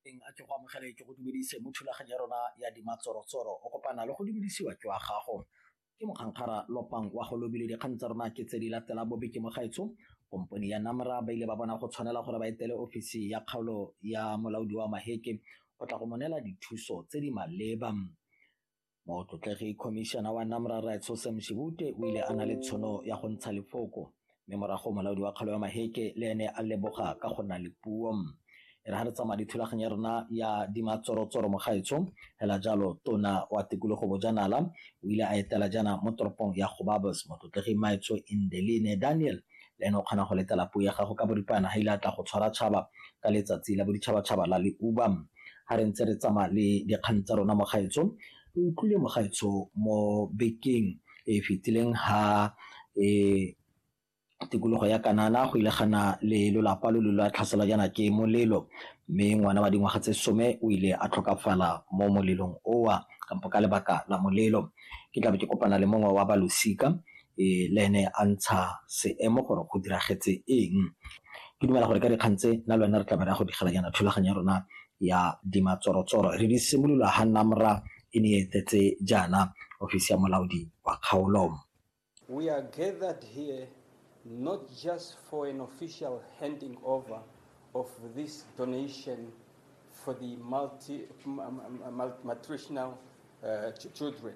teng a ke go amogele ke go dumedise mo thulaganyo ya rona ya dimatsorotsoro o kopana le go dumedisiwa ke wa gago ke mokgankgara lopang wa go lobile dikgang tsa rona ke tse di latela bobe ke mogaetsho kompone ya namra ba ile ba bona go tshwanela gore ba etele ofisi ya kgaolo ya molaodi wa maheke o tla go monela dithuso tse di maleba Motlotlegi Khomišene wa NAMRA Rre Tshose Mshibute o ile a na le tshono ya go ntsha lefoko mme morago molaodi wa kgaolo ya Maheke le ene a leboga ka go nna le puo. E re ga re tsamaya le thulaganyo ya rona ya dimatsorotsoro mogaetsho fela jalo tona wa tikologo bojanala o ile a etela jaana mo toropong ya Gobabos motlotlegi Maetsho Indeline Daniel le ene o kgona go letela puo ya gago ka boripana ga ile a tla go tshwara tšhaba ka letsatsi la boditšhabatšhaba la leuba ha re ntse re tsamaya le dikgang tsa rona mogaetsho re utlwile mogaetsho mo bekeng e e fetileng ha e tikologo ya kanana go ile gana le lolapa lo lo la tlhaselwa jaana ke molelo mme ngwana wa dingwaga tse some o ile a tlhokafala mo molelong owa kampo ka lebaka la molelo ke tlabe ke kopana le mongwe wa balosika le ene a ntsha seemo gore go diragetse eng. Ke dumela gore ka dikgang tse nna le wena re tla be re ya go digela jaana thulaganyo ya rona ya dimatsorotsoro re di simolola ha NAMRA e ne e etetse jaana ofisi ya molaodi wa kgaolo. We are gathered here not just for an official handing over of this donation for the multi, malnutritional uh, children.